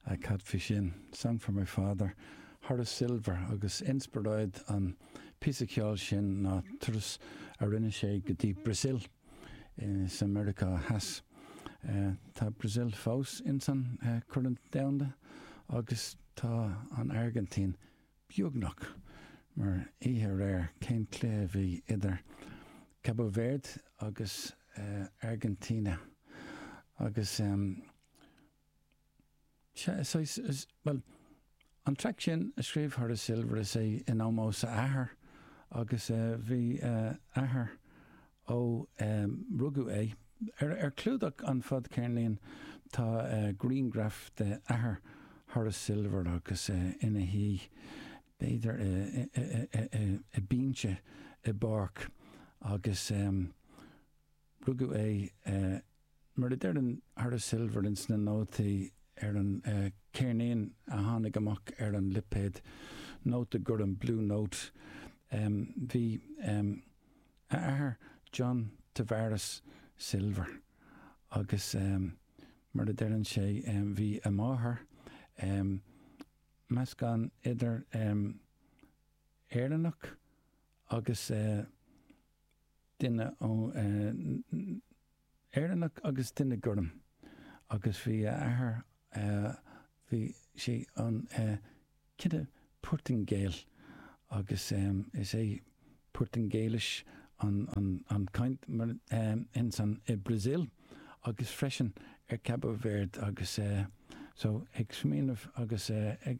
a cad faoi sin, song for my father, Horace Silver, agus inspioráid an phíosa ceoil sin ná turas a rinne sé go dtí Brasil sa Meiriceá Theas. Tá Brasil fós insan Corn Domhanda agus tá an Airgintín. beagnach mar oíche aréir, cén cluiche a bhí idir Cabo Verde agus Argentina agus sea, saghas, bhuel, an traic sin a scríobh Horace Silver, is é in ómós a athar agus bhí a athair Ó rugadh é, ar chlúdach an fadcheirnín, tá grianghraf de athair Horace Silver agus ina shuí, b'fhéidir, ar binse i bpáirc, agus rugadh é Mar a deireann Horace Silver ins na nótaí ar an ceirnín a tháinig amach ar an lipéad nóta gorm, Blue Note, bhí a athair John Tavares Silver agus mar a deireann sé bhí a mháthair meascán idir Éireannach agus duine ó na. Éireannach agus duine gorm agus bhí a athair bhí sé an cine Portaingéil agus is é Portaingéilis an chaint insan i Brasil agus freisin ar Cabo Verde agus so ag smaoineamh agus ag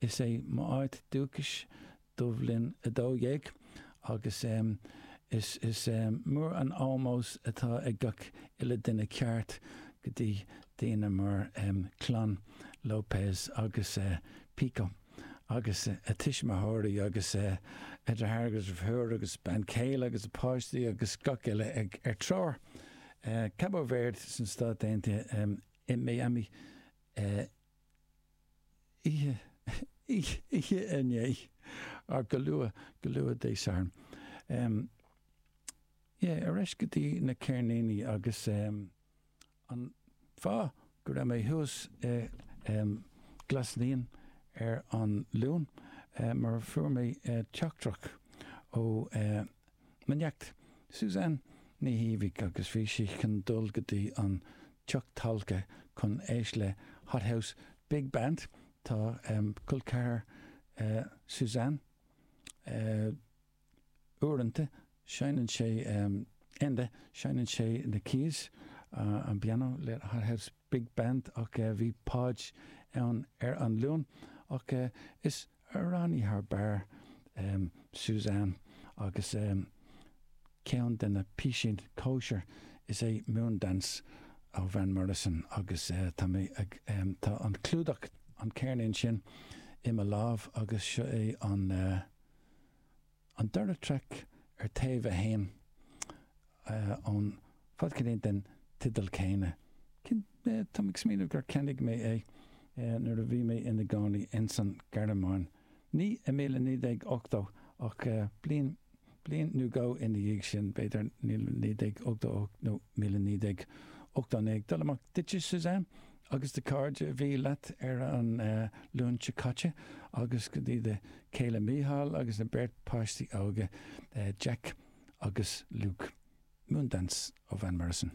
Is é m'áit dúchais Dubh Linn 12 agus is mór an ómós atá ag gach uile duine ceart go dtí daoine mar chlann Lopes agus Pico agus a tuismitheoirí agus a dheartháir agus a dheirfiúr agus a bean chéile agus a páistí agus gach uile ar treoir Cabo Verde sna Stáit Aontaithe i Miami i oíche inné ach go luath, go luath Dé Sathairn. Ie, ar ais go dtí na ceirníní agus an fáth go raibh mé thuas i Glas Naíon ar an Luan mar fuair mé teachtaireacht ó Mo neacht, Suzanne Ní Shíbhigh agus bhí sí chun dul go dtí an teach talca chun éisteacht le Hot House Big Band. Tá col ceathar Suzanne uaireanta, seinneann sé Enda, seinneann sé na keys, an pianó, le Hot House Big Band ach bhí Podge ann ar an Luan ach is amhránaí thar barr Suzanne agus ceann de na píosaí cóisir is ea Moondance ó Van Morrison agus tá mé ag, tá an clúdach, an ceirnín sin i mo lámh agus seo é an, An dara traic ar taobh a haon ón bhfadcheirnín den teideal céanna, táim ag smaoineamh gur cheannaigh mé é nuair a bhí mé ina gcónaí ins an Ghearmáin, ní i míle naoi déag ochtó ach bliain nó dhó ina dhiaidh sin, b'fhéidir naoi déag ochtó ocht nó míle naoi déag ochtó naoi, ag dul amach duitse Suzanne? agus do chairde a bhí leat ar an Luan seo caite agus go dtí do chéile Mícheál agus an bheirt páistí óga Jeaic agus Luke. Moondance ó Van Morrison.